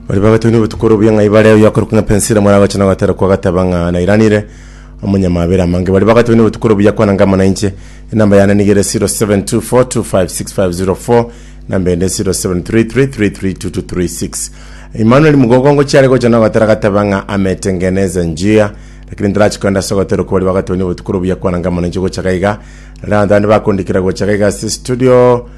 Bari bagatebania obotuko ore buya ng'a ibare oyo akorokwa ng'a Pensira moragocha na ogatera kwa agateba ng'a nairanire omonyamabere amange. Bari bagatebania obotuko ore buya kwana ng'a amo nainche. Enamba yane niga ere 0724256504 namba ende 0733332236. Emmanuel Mugogongo chiare gocha na ogatera agateba ng'a ametengeneza njia lakini ntarachi kogenda ase ogotera okwo bari bagatebania obotuko ore buya kwana ng'a amo nainche gocha gaiga. Rero abanto bande bakondikera gocha gaiga ase studio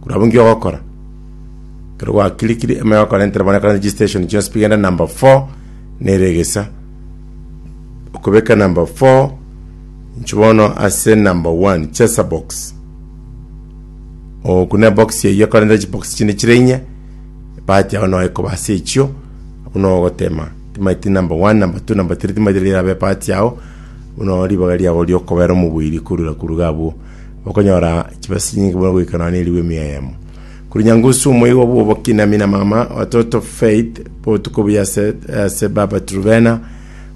Korwa abwo inki ogokora? Ekero gwakirikiri emo yagokora entera bono ekero registration chionsi pi genda number 4 nere egesa okobeka number 4 inche bono ase number 1 chesa box okune box eyio ekore nere chibox chinde chire inye ebahati yao noe koba ase echio abwo noe ogotema timaeti number 1 number 2 number 3 timaeti riabe ebahati yao buna ribaga riago riokobera omobuiri korwa koruga abwo. okonyora chibesa chinyinge buna goika nonya nerigwa emiya eyemo. Kuri nyangusu omoigwa bw'obokinami na mama wa Toto Faith botuko buya ase ase Baba Truvena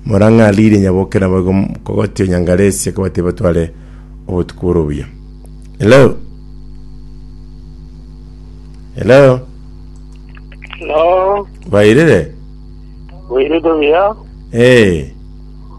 morang'aririe nyaboke nabo igo kogotio nyangaresia kobati batware obotuko bore obuya. Hello. Hello. No, Bairire. bwirito buya. Eh.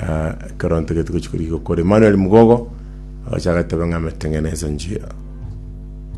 Ah, ekero ntige tigochi korigwa kore Emmanuel Mugogo, agacha agateba ng'a ameteng'enesa njia.